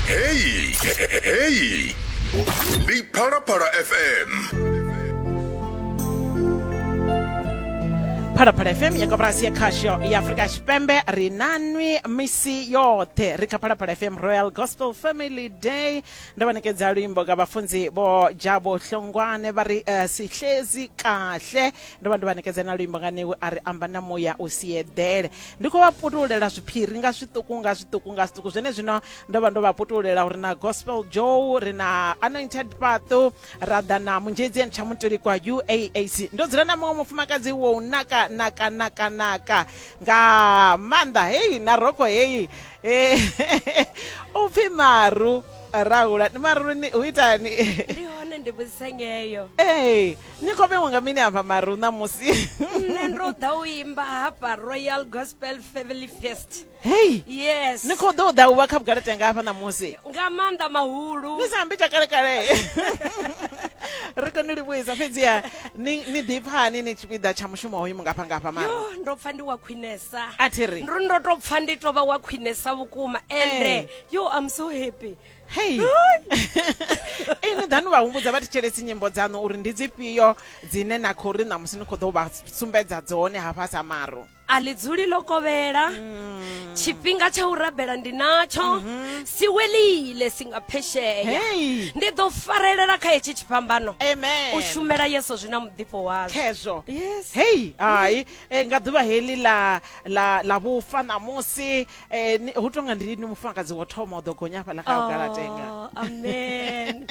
Heyi heyi ndi Phalaphala FM. phalaphala fm ya koporasi ya khasho ya afurika tshipembe ri nanwi misi yoṱhe ri kha phalaphala fm royal gospel family day ndo vha nekedza luimbo ka vhafunzi vho jabo hlongwane vha ri eh, sihlezi kahle Ndo vha ndo vha ṋekedza na luimbo nga newe a ri amba na muya u si eḓele ndi khou vha putululela zwiphiri nga zwiṱuku nga zwiṱuku nga zwiṱuku zwene zwino ndo vha ndo vha putululela uri na gospel joe ri na anointed paṱo ra ḓa na munzhedzi and tsha mutolikwa uaac ndo dzula na muṅwe mufumakadzi wo u naka naka naka naka nga maanḓa heyi na roko heyi eh, u pfhi maru rahula ni maru ni u itani ndi hone ndi vhudzisa ngeyo ee ni khou vhewa nga mini hafha maru ṋamusi nṋe ndo ḓa u imba hafha royal gospel family fest hei yes ni khou ḓo u ḓa u vha kha vhugala tenga hafha ṋamusi nga maanḓa mahulu ni sa ambi tsha kalekale ri kone livhuisa fhedziha ni ḓipfani ni tshipiḓa tsha mushumo hoyu mungafha ngafha ma ndo pfa ndi wa khwinesa a thi ri ndo tou pfa ndi tou vha wa khwinesa vhukuma ende eh. yo am so happy hei ini ḓa ni vha humbudza vha thetshelesi nyimbo dzaṋu uri ndi dzifhio dzine na khou ri ṋamusi ni khou ḓo vha sumbedza dzone hafha sa maro a ḽi dzuli ḽo kovhela mm. tshifhinga tsha u rabela ndi natsho mm-hmm. si welile si nga phesheya ndi ḓo farelela kha hetshi tshifhambano u shumela yeso zwi na muḓifho wazwo khezwo hei hai eh, nga ḓuvha heḽi ḽa vhufa ṋamusi Eh, ni- hu tonga ndi ni mufumakadzi wo thoma u ḓo gonya hafhaḽa kha vhugalatenga Oh, amen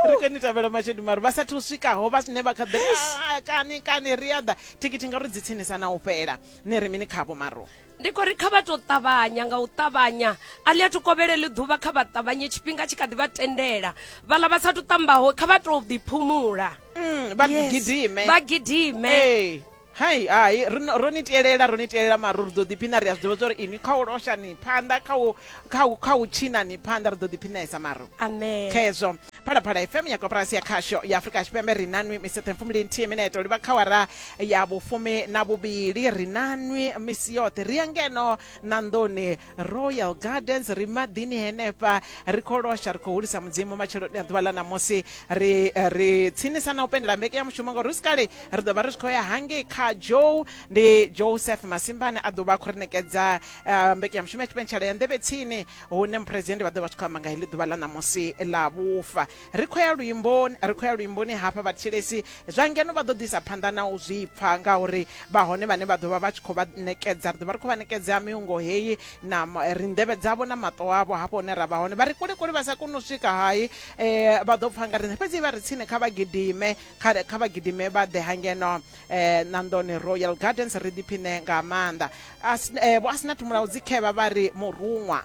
ri khou ni tavhela mashedu mari vha sathu swikaho vha sine vha kha ḓi "Ah, kani kani ri a ḓa thikithi ngauri dzi tsinisa na u fhela ni ri mini khavho maro ndi khou ri kha vha tou ṱavhanya nga u ṱavhanya a ḽi a thu kovhelele ḓuvha kha vha ṱavhanye tshifhinga tshi kha ḓi vha tendela vhaḽa vha sa thu ṱambaho kha vha tou ḓiphumula Mm, vha Yes. gidime vha gidime Ee. Hai, hai, ri no- ro ni tielela, ro ni tielela mara ri ḓo ḓiphina ri a zwi ḓivha zwa uri inwi kha u losha ni phanḓa kha u kha u kha u tshina ni phanḓa ri ḓo ḓiphinesa maro amen kha hezwo phalaphala fm ya koporasi ya khasho ya afurika tshipembe ri na nwi misi yoṱhe mfumili nthihi mineto livha kha wara ya vhufumi na vhuvhili ri na nwi misi yoṱhe ri ya ngeno na nḓuni royal gardens ri maḓini henefha ri khou losha ri khou hulisa mudzimu matsheloni a ḓuvha ḽa ṋamusi ri eh, ri tsinisa na u pendela mbeke ya mushumo ngauri hu si kale ri ḓo vha ri tshi khou ya hangei kha joe ndi joseph masimbane a ḓo vha a khou ri nekedza eh, mbeke ya mushumo ya tshipentshela ya nḓevhe tsini hune muphuresidennde vha ḓo vha tshi khou amba nga heḽi ḓuvha ḽa ṋamusi ḽa vhufa Ri khou ya luimboni, ri khou ya luimboni hafha vhathetshelesi zwa ngeno vha ḓo ḓisa phanḓa na u zwi pfa ngauri vha hone vhane vha ḓo vha vha tshi khou vha ṋekedza, ri ḓo vha ri khou vha ṋekedza miungo heyi na ri nḓevhe dzavho na maṱo avho hafho hune ra vha hone. Vha ri kule kule vha sa koni u swika hai vha ḓo pfa nga riṋe fhedzi vha ri tsini kha vha gidime kha kha vha gidime vha ḓe ha ngeno ṋanḓoni Royal Gardens ri ḓiphiṋe nga maanḓa. Vho Asnath Mulaudzi Khevha vha ri muruṅwa.